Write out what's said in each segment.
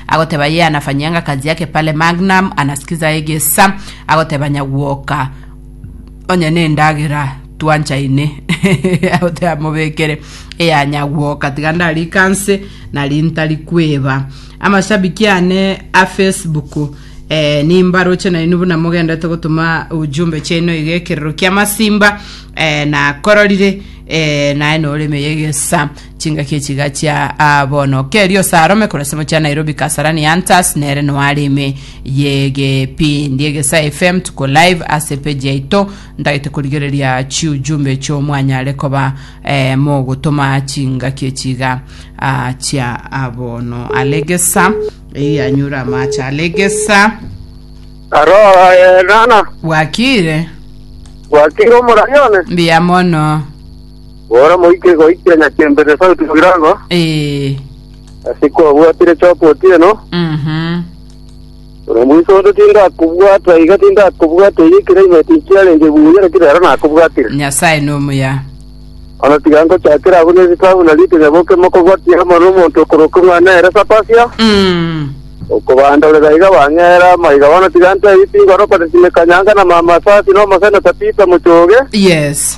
Agoteba ye anafanyanga kazi yake pale Magnum anasikiza egesa agoteba nyagwoka onye nendagera twanchaine agoteba mobekere eya nyagwoka tiga ndarikanse nari ntari kweba amashabiki ane a Facebook eh, nimbaroche nainwe buna mogendete gotuma ujumbe chaino iga ekerero kia masimba eh, nakororire eh, naye noreme yegesa Chingaki echi gachia aa bono. Kerio Sarome korwa esemo chia Nairobi Kasarani Hunters nere noare ime y'egepindi Egesa FM tuko live ase epeji yaito ntagete korigereria chiujumbe echio mwanyare koba eh, mogotoma chingaki echi iga ah, chia ah, bono alegesa eyi anyure amache alegesa Aro eh, nana bwakire bwakire omorayone mbiya mono Bono moike goikia nyakembe The South Mugirango, Ee. ase kwabwatire chopa otieno, Mhm. buna mbuso onde tindakobwata iga tindakobwata iga ekeraimeti nkiarenge buya naki rero nakobwatire. Nyasaye nomuya. Ono tiga ngochakera abwo nesitabu na ritunya boke mokobwatia amo nomonto okoroka omwana ere Sapasia, Mm. okobandorera iga bang'era amaiga bono tiga ntebi tingorokwa Tesimekanyanga na Mama Sasi na Omoseneta Peter Mochoge, Yes.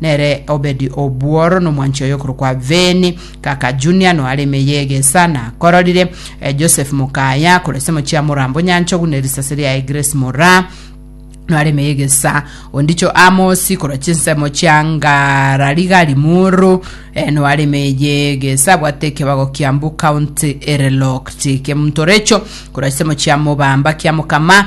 Nere Obedi obworo nomwanchi oye okorokwa Beni, gaka Junia noare ime y'egesa, na akororire eh, Joseph mokaya akorwa ase mochie Amoram bonyanchogu ne risase riaye Grace moraa noare ime y'egesa, ondicho Amosi korwa chinsemo chia Ngararigari muru eh, noare ime y'egesa, abwate ekebago Kiambu County Erelok Chike Muntorecho korwa chisemo chia Mobamba kia Mokama